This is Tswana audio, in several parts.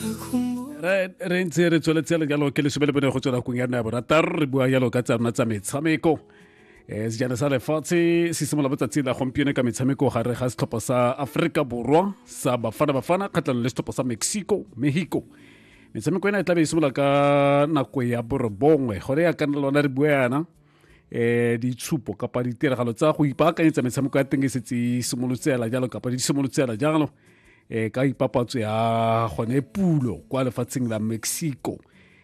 re ntse re tsweletse le jalo ke lesome le bone go tswela kong ya nna ya borataro re bua jalo ka tsa rona tsa metshameko um sejana sa lefatshe se simolola botsatsi la gompieno ka metshameko gare ga setlhopha sa aforika borwa sa bafana bafana kgatlhanong le setlhopha sa mexico mexico metshameko ena e tlabe e simolola ka nako ya borobongwe gone ya kana lona re bua yana eh ditshupo kapa ditiragalo tsa go ipaakanyetsa metshameko ya teng e setse e simolotse ela jalo kapa di simolotse ela jalo eh ka ipapatso ya gone pulo kwa lefatsheng la mexico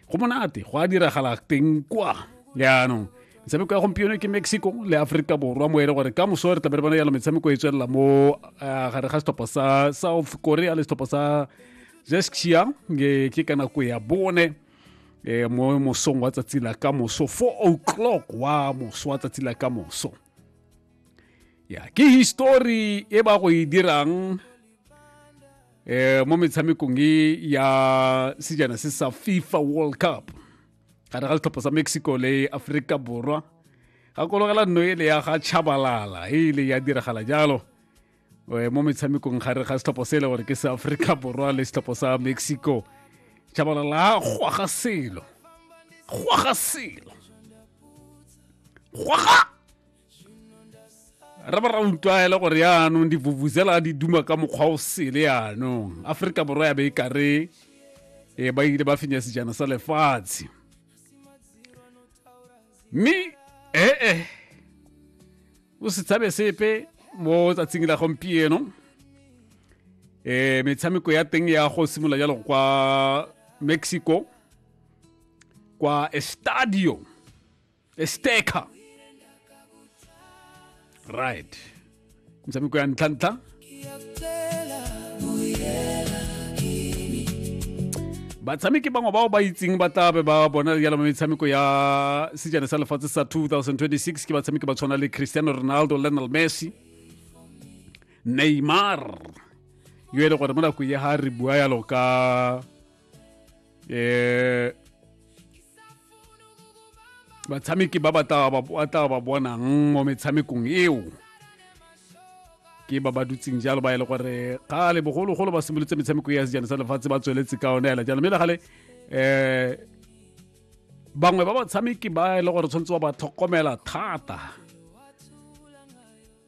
go monate go a diragala teng kwa jaanong metshameko ya gompieno ke mexico le aforika borwa mo e le gore ka moso re tlabe re bona jalo metshameko e tswelela mo eh, gare ga setlhopha sa south korea le setlhopha sa zeskia ke ka nako ya bone eh, mo mosong wa tsatsi la ka moso 4 o'clock wa moso wa tsatsi la ka moso ya ke histori e ba go e dirang eh mo metshamekong e ya sejana se sa fifa world cup gare ga ditlhopho sa mexico le aforika borwa gakologela nno e le ya ga chabalala e ile ya diragala jalo eh, mo metshamekong gare ga setlhopho se e le gore ke sa aforika borwa le setlhopho sa mexico jabalala gwaga selo gwaga selo gwaga re ba ra utlwa e le gore yaanong divuvuzela di duma ka mokgwa o sele yaanong aforika borwa ya be e kare e ba ile ba fenya sejana sa lefatshe mme ee eh, eh. o se tshabe sepe mo tsatsing la gompieno eh metshameko ya teng ya go simolola jalo kwa mexico kwa estadio esteca right metshameko ya ntlhantlha batshameki bangwe bao ba itseng ba tla be ba bona jalo mo metshameko ya sejana sa lefatshe sa 2026 ke batshameki ba tshwana le cristiano ronaldo lionel messi neymar yo e le gore mo nakong ya ga re bua yalo ka eh batshameki ba ba tla ba bonang mo metshamekong eo ke ba ba dutseng jalo ba e le gore kgale bogologolo ba simolotse metshameko ya sejana sa lefatshe ba tsweletse ka one ela jalo mme le gale um bangwe ba batshameki ba e le gore tshwanetse ba ba tlhokomela thata